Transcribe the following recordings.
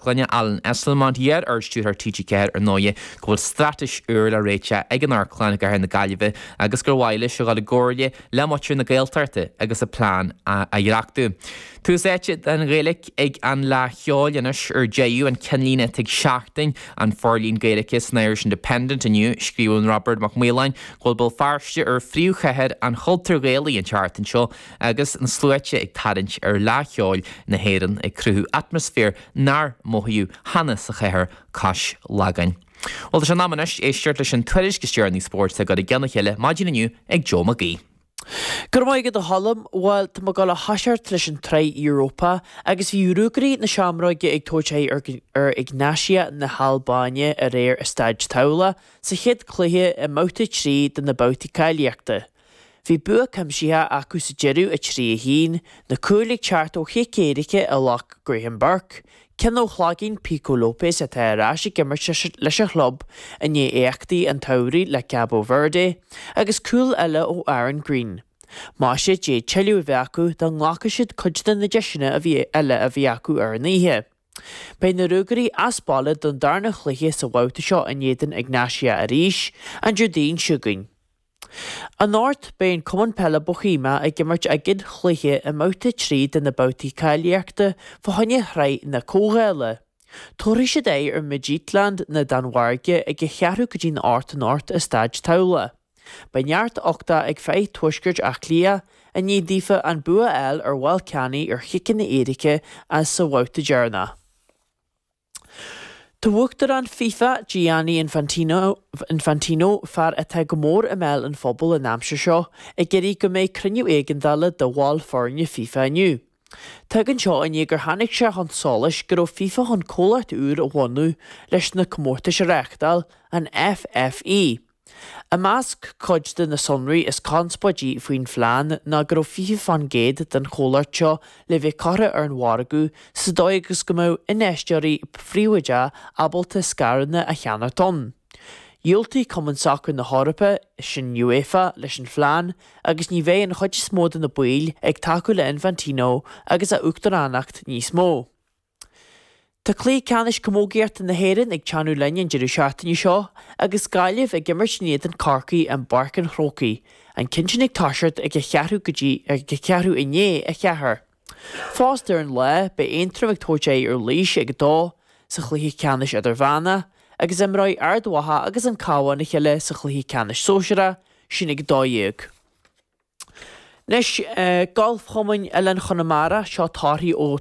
Le Alan Esslemont, iar-Ardstiúrthóir TG4, ar ndóigh, go bhfuil straitéis úr le réiteach ag an amharclann i gcathair na Gaillimhe agus gur mhaith leis a dhul i gcomhairle le muintir na Gaeltachta agus a plean a dhreachtú. Tús áite don Ghaeilge ag an Fhleadh Cheoil anois is go deo, an ceannlíne atá ag Seachtain an forlíon Gaeilge san Irish Independent inniu. Scríobhann Robert McMillen go bhfuil Béal Feirste ar phríomhchathair an chultúir Ghaelaigh an tseachtain seo, Agus na sluaite ag tarraingt ar Fhleadh Cheoil na hÉireann ag cruthú atmaisféar nár mothaíodh cheana sa chathair cois Lagáin. Bhuel, tá sé in am anois éisteacht leis na tuairiscí is deireanaí spóirt á gcur i gceann a chéile maidin inniu ag Joe Mag Aoidh. Go raibh maith agat a Choilm. Bhuel, tá mé ag dul a thoiseacht leis an tsraith Europa agus bhí Ruagairí na Seamróige ag tabhairt aghaidh ar Egnatia na hAlbáine aréir i Staid Tallaght sa chéad cluiche i mbabhta 3 de na babhtaí cáilíochta. Bhí bua cuimsithe acu sa deireadh 3, 1, na cúil ag teacht ó chic éirice a ghlac Graham Burke, ceann ó chloigín Pico Lopes atá ar ais ag imirt leis an chlub i ndiaidh éachtaí an tsamhraidh le Cabo Verde, agus cúl eile ó Aaron Greene. Maise, d'fhéadfadh tuilleadh a bheith acu dá nglacfadh siad cuid de na deiseanna a bhí eile a bhí acu ar an oíche. Beidh na Ruagairí as baile don darna chluiche sa bhabhta seo in éadan Egnatia arís, an Déardaoin seo chugainn. Anocht, Beidh an Cumann Peile Boheimia ag imirt a gcéad chluiche i mBabhta 3 de na babhtaí cáilíochta fá choinne Shraith na Comhdhála. Tabharfaidh siad aghaidh ar Midtjylland na Danmhairge ag a cheathrú go dtí'n hocht anocht i Staid Tallaght. Beidh neart uchtach ag fir Thuaisceart Átha Cliath i ndiaidh daofa an bua fháil ar Ballkani ar chiceanna éirice insa bhabhta deireanach. Tá Uachtarán fifa, Gianni Infantino, fear atá go mór i mbéal an phobail an aimsir seo, ag iarraidh go mbeidh cruinniú éigeandála de bhaill foirne fifa inniu. Tagann seo i ndiaidh gur tháinig sé chun solais go raibh fifa chun comhlacht úr a bhunú leis na comórtais a reáchtáil, an FFE. I measc cuid de na sonraí is conspóidí faoin phlean ná go raibh 20 fán gcéad den chomhlacht seo le bheith curtha ar an mhargadh sa dóigh agus go mbeadh infheisteoirí phríobháideacha ábalta scaireanna a cheannacht ann. Dhiúltaigh Cumann Sacair na hEorpa, sin UEFA, leis an phlean agus ní bheidh an chuid is mó de na baill ag tacú le Infantino agus a uachtaránacht níos mó. Tá cluiche ceannais camógaíochta na hÉireann ag teannadh linn an deireadh seachtaine seo agus Gaillimh ag imirt in éadan Corcaí i bPáirc an Chrócaigh, an ceann sin ag toiseacht ag a cheathrú go dtí ag a cheathrú i ndiaidh a cheathair. Fosta ar an lá beidh Aontroim ag tabhairt aghaidh ar Laois ag a dó sa chluiche ceannais idirmheánach agus imreoidh Ard Mhacha agus an Cabhán a chéile sa chluiche ceannais sóisearach sin ag a dó dhéag. Anois, Galfchumann Oileáin Chonamara, seo torthaí ó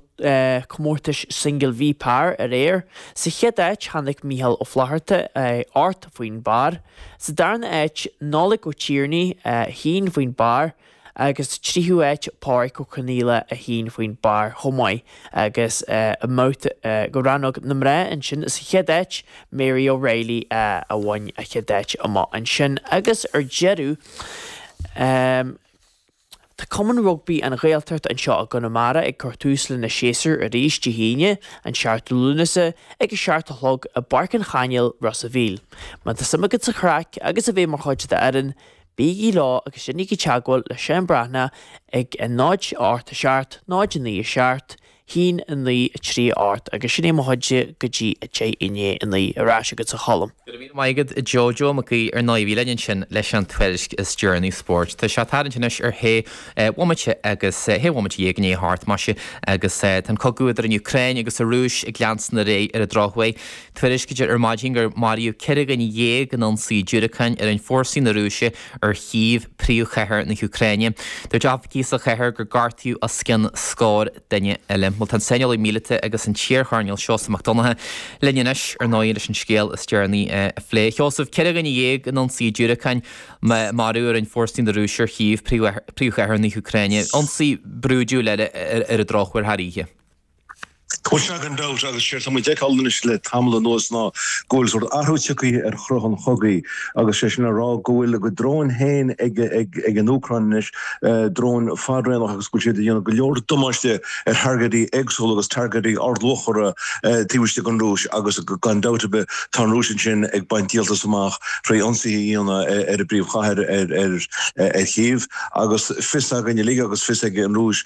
Comórtais Singil V Par aréir. Sa chéad áit, tháinig Micheál Ó Flatharta, 8, faoin bpar. Sa darna áit, Nollaig Ó Tiarnaigh, 1, faoin bpar. agus sa tríú áit, Páraic Ó Conaola, 1, faoin bpar chomh maith. agus i mbabhta do rannóg na mná ansin sa chéad áit, Mary O'Reilly a bhain an chéad áit amach ansin agus ar deireadh Tá Cumann Rugbaí an Ghaeltacht anseo i gConamara ag cur tús lena séasúr arís Dé hAoine an 7ú Lúnasa ag a seacht a chlog i bPáirc an Chainéil, Ros a' Mhíl. Má tá suim agat sa chraic agus a bheith mar chuid d'fhoireann. Bígí leo agus déanaigí teagmháil le Seán Breathnach ag 0 8 7 0 9 7 1 9 3 8 agus sin é mo chuidse go dtí 10 i ndéidh 9 Ar ais agat a Cholm. Go raibh míle maith agat a Joe Joe Mac Aoidh ar ndóigh a bhí linn ansin leis an tuairisc is deireanaí spóirt. Tá sé ag tarraingt anois ar shé bhomaite agus shé bhomaite dhéag i ndéidh a hocht, maise, agus tá an cogadh idir an Úcráin agus an Rúis ag leanstan ar aghaidh ar an drochuair. Tuairiscítear ar maidin gur maraíodh ceithre dhuine dhéag in ionsaí diúracáin a rinne fórsaí na Rúise ar Chív, príomhchathair na hÚcráine. Dúirt oifigigh sa chathair gur gortaíodh os cionn scór duine eile. Bhuel, tá an saineolaí míleata agus an t-iarchoirnéal Seosamh Mac Donnacha linn anois, ar ndóigh, leis an scéal is deireanaí a phlé. A Sheosaimh, ceithre dhuine dhéag in ionsaí diúracáin a marú a rinne fórsaí na Rúise ar Chív, príomhchathair na hÚcráine. Ionsaí brúidiúil eile ar an drochuair thar oíche. Cinnte gan dabht agus séard tá muid ag fheiceáil anois le tamall anuas ná go bhfuil sórt athrú tiocthaí ar chruth an chogaidh agus 'sé sin le rá go bhfuil a gcuid dróin féin ag an Úcráin anois, dróin fadraonach agus go bhfuil siad ag déanamh go leor damáiste ar thargaidí éagsúla agus targaidí ardluachmhara taobh istigh den Rúis agus gan dabht ar bith tá an Rúis ansin ag baint díoltas amach trí ionsaithe a dhéanamh ar a bpríomhchathair, ar Chív agus fios againn uilig agus fios ag an Rúis.